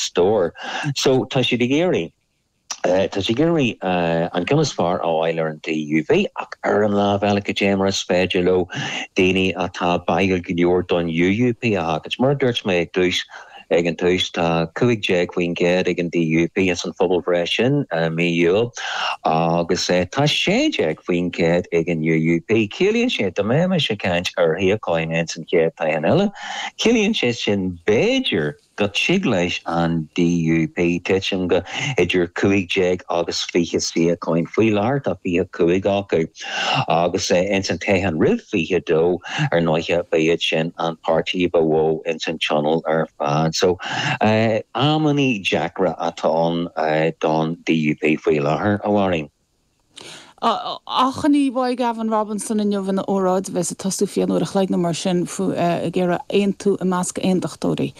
stór. So, tá siad ag iarraidh, tá siad ag iarraidh an ceann is fearr a fháil ar an TUV ach ar an lámh eile, cad é mar is féidir leo daoine atá báúil go leor don UUP a tharraingt. Mar a dúirt mé ag tús, ag an tús, tá 15% ag an DUP ins an phobalbhreith sin i mí Iúil agus tá 16% ag an UUP. Ciallaíonn sé, dá mbeimis ag caint ar shuíocháin ins an chéad toghchán eile, ciallaíonn sé sin b'fhéidir, Go dtig leis an DUP titim go idir cúig déag agus fiche suíocháin. Faoi láthair tá fiche cúig acu, agus ins an toghchán roimh fiche dó ar ndóiche b'iad sin an páirtí ba mhó ins an Tionól ar fad. So amannaí deacra atá ann don DUP faoi láthair, a Mháirín. Achainí uaidh Gavin Robinson inniu ina óráid a bheas ag tosú faoi cheann uair an chloig nó mar sin ag iarraidh aontú i measc aondachtóirí.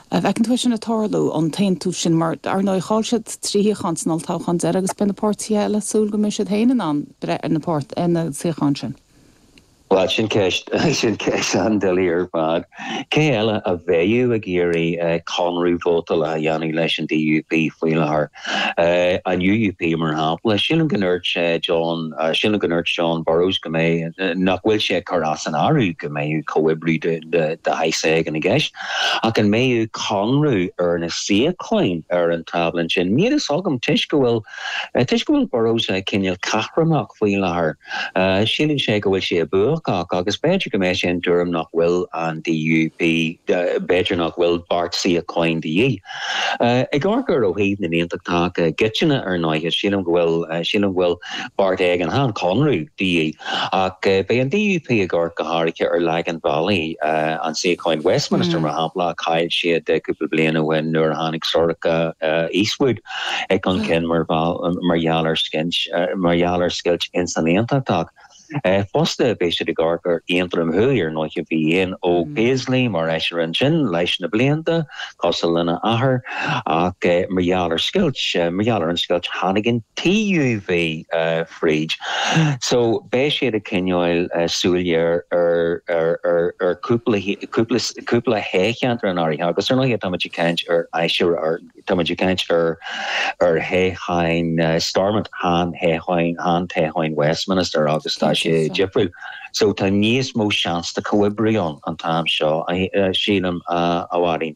An bhfeiceann tú sin ag tarlú, an t-aontú sin, mar dar ndóigh chaill siad trí shuíochán san olltoghchán deiridh agus beidh na páirtithe eile ag súil go mbeidh siad féin in ann breith ar na suíocháin sin. Bhuel, sin ceist, sin ceist an-doiligh ar fad. Cé eile a bheadh ag iarraidh conradh vótála a dhéanamh leis an DUP faoi láthair? An UUP, mar shampla. Sílim go ndúirt John, sílim go ndúirt Jon Burrows go mbeadh, nach bhfuil sé ag cur as an áireamh go mbeadh comhoibriú de, de, de shaghas éigin i gceist. Ach an mbeadh conradh ar na suíocháin ar an tábla ansin? Níl a fhios agam, toisc go bhfuil, Toisc go bhfuil Burrows cineál caithréimeach faoi láthair, síleann sé go bhfuil sé buacach, agus b'fhéidir go mbeidh sé den tuairim nach bhfuil an DUP, b'fhéidir nach bhfuil beart suíocháin de dhíth. Ag amharc air ó thaobh na n-aontachtach i gcoitinne, ar ndóiche, sílim go bhfuil, sílim go bhfuil beart éigin, ann, conradh, de dhíth, ach beidh an DUP ag amharc go háirithe ar Lagan Valley, an suíochán Westminster, mar shampla, a chaill siad cúpla bliain ó shin nuair a tháinig Sorcha Eastwood. chun cinn mar gheall ar scint, mar gheall ar scoilt ins an Aontacht ach fosta beidh siad ag amharc ar Aontroim Thuaidh, ar ndóiche bhí Ian Óg Paisley mar fheisire ansin leis na blianta, cosúil lena athair, ach mar gheall ar scoilt, mar gheall ar an scoilt tháinig an TUV fríd so beidh siad ag coinneáil súil ghéar ar ar ar ar chúpla cúpla cúpla cheantar in áirithe agus ar ndóiche táimid ag caint ar fheisire ar Tá muid ag caint ar thoghcháin Stormont, chan toghcháin, chan toghcháin Westminster agus tá sé difriúil so tá níos mó seans de chomhoibriú ann an t-am seo, sílim, a Mháirín.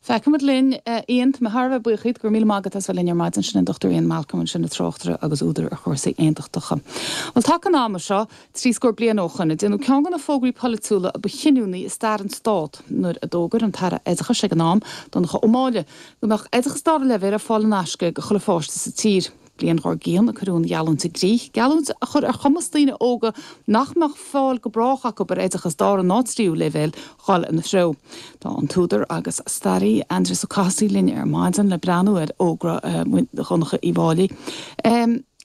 Feicfimid linn. Ian, tá mé thar a bheith buíoch dhíot. Go raibh míle maith agat as bheith linn ar maidin. Sin an Dr Ian Malcolm, sin an tráchtaire agus údar ar chúrsaí aontachtacha. Bhuel, taca an ama seo. trí scór bliain ó shoin, a déanadh ceann de na fógraí polaitiúla a ba chinniúnaí i stair an Stát, nuair a d'fhógair an tAire Oideachais ag an am, Donncha Ó Máille, go mbeadh oideachas dara leibhéil ar fáil in aisce ag chuile pháiste sa tír. Bliain dhár gcionn a cuireadh an gheallúint i gcrích, geallúint a chuir ar chumas daoine óga nach mbeadh fáil go brách acu ar oideachas dara ná tríú leibhéil, dhul ina threo. Tá an t-údar agus staraí, Aindrias Ó Cathasaigh, linn ar maidin le breathnú ar fhógra Dhonncha Uí Mháille.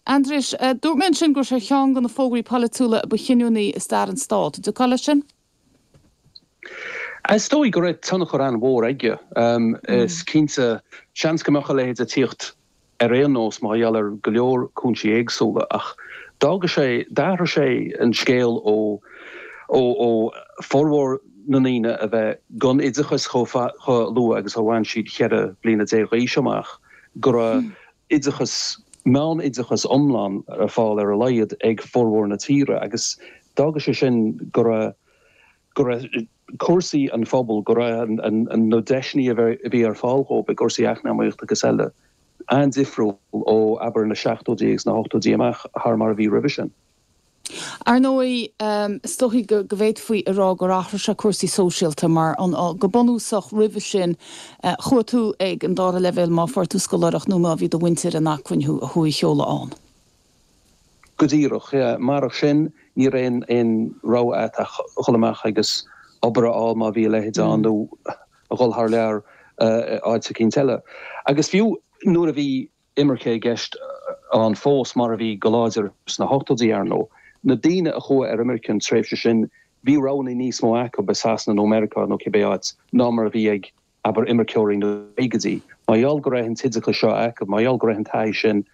Aindrias, Dúirt mé ansin go raibh sé ar cheann de na fógraí polaitiúla ba chinniúnaí i stair an Stát. An dtiocfá leis sin? Is dóigh go raibh tionchar an-mhór aige. Is cinnte, seans go mbeadh a leithéid ag tíocht ar aon nós mar gheall ar go leor cúinsí éagsúla ach d'fhága sé, d'athraigh sé an scéal ó formhór na ndaoine a bheith gan oideachas chomh luath agus a bhain siad cheithre bliana déag d'aois amach go raibh oideachas, meánoideachas iomlán ar fáil ar a laghad ag formhór na tíre agus d'fhága sé sin go raibh, go raibh cúrsaí an phobail, go raibh na deiseanna a bhí ar fáil dhóibh i gcúrsaí eacnamaíochta agus eile an-difriúil ó, abair, na seachtóidí agus na hochtóidí amach thar mar a bhí roimhe sin. Ar ndóigh, is dóichí go bhféadfaí a rá gur athraigh sé cúrsaí sóisialta mar, go bunúsach, roimhe sin chuaigh tú ag an dara leibhéal má fuair tú scoláireacht nó má bhí do mhuintir in acmhainn thú a sheoladh ann. Go díreach. Marach sin, ní raibh aon rogha agat ach dhul amach agus obair a fháil má bhí a leithéid ann, nó a dhul thar lear nó áit eicínt eile. Agus fiú nuair a bhí. imirce i gceist ann fós, mar a bhí go láidir sna hochtóidí, ar ndóigh. Na daoine a chuaigh ar imirce an tréimhse sin, bhí roghanna níos mó acu, i Sasana nó Meiriceá nó cibé áit, ná mar a bhí ag, abair, imirceoirí na gcaogaidí. Mar gheall go raibh an t-oideachas seo acu, mar gheall go raibh an taithí sin,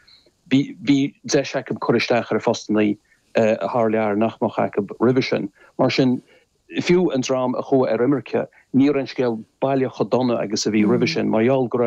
bhí deis acu cur isteach ar phostanna thar lear nach mbeadh acu roimhe sin. Mar sin, fiú an dream a chuaigh ar imirce, ní raibh an scéal baileach chomh dona agus a bhí roimhe sin, mar gheall go raibh,